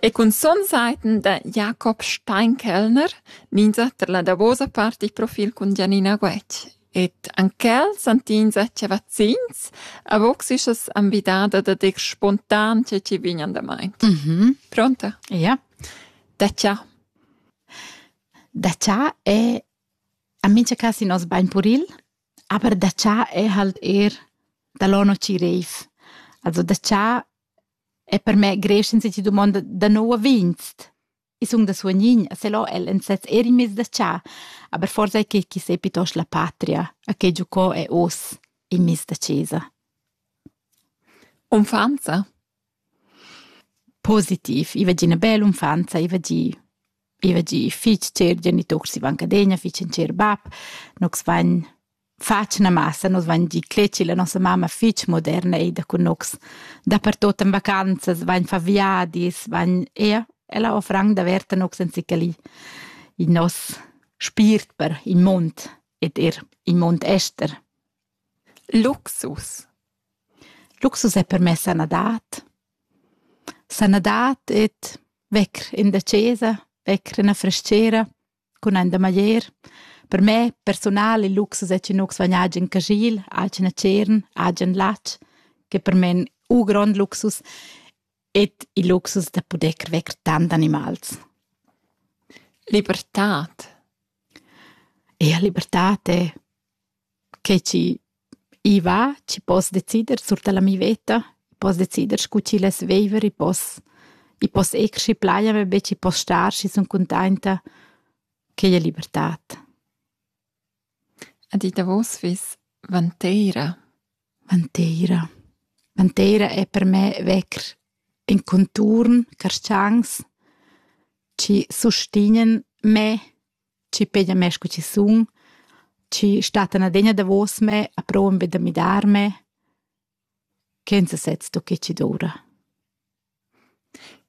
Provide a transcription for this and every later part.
E cun son saiten da Jakob Steinkellner ninza tar la davosa part dil profil cun Gianina Guetg. Ed anc quel santinza che vaccins avoxisas envidada da dir spontan che ci vignan damain. Mhm. Pronta? Ja. Da ciao. Da ciao e a mincha cas in nos bain puril. Aber da cha è halt eir da là no chi reiv. Also da cha è per me greiv senza chi dumonda da nouv a vinst. I sun da suognin, a se là el ün sez eir in meis da cha, aber forsa è que chi s'è piitost la patria, a che giocò è hoz in meis da chesa. Unfa'nza? Positiv, i va gi üna bella unfanza, i va gi i va gi fich tschert, geniturs i van cadegna, fich ün tschert bap, nogs vain fach üna massa, nos vain gi cletgi la nossa mamma fich moderna eir da cun nogs. Dapertuot in vacanzas vain fà viadis, vain eir, ella ho franc daverta nogs anzichà li il nos spiert per il mund ed eir il mund ester. Luxus. Luxus ei per mei sanadad. Sanadad ed vecker in da chasa, vecker ina frestgera cun ein da maglier. Per mei persunal il luxus ei che nus vegn agen caschil, agen tschern, agen latg, che per mei ein u grond luxus ed il luxus da puder vecker tant animals. Libertad. Ea, libertad è Che chi i va, chi poss decider sur da la mia veta. I poss decider scu chi less viver, i poss i poss eir schi plai a me be chi poss star, schi sun cuntainta. Quai è libertad. Ed ì davos fiss vanteira. Vanteira. Vanteira è per me vecr in conturn, carschancs chi sustignan me chi peglia mê scu chi sun, chi stattan adegna davos me a prouvan be da midarme, ch'els sez sto che chi doura.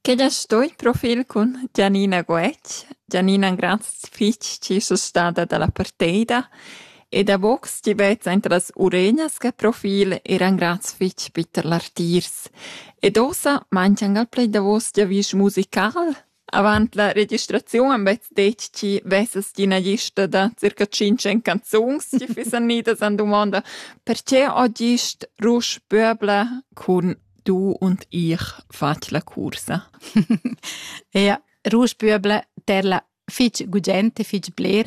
Che as sto in profil cun Gianina Goetsch? Gianina un grand fich chi es stada da la parteida e davo chi vezza inter las uregnas che profil eran grands fich bitter lartiers. Ed ossa manchang al pled davos giavüsch musical? Avant la registraziun han bets detg chi vessas ti ina lista da circa tschintg canzuns ti fissan idas an dumonda perche ho gist Rusch Böbler cun Du und ich fat la cursa? ja, Rusch Böbler ter la fitg gugent e fitg bler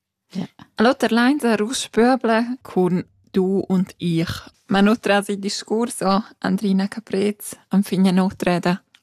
L'oter lain sar uss pöbla cun du und ich. Ma no trasi discurs o Andrina Caprez enfin a n'otra eda.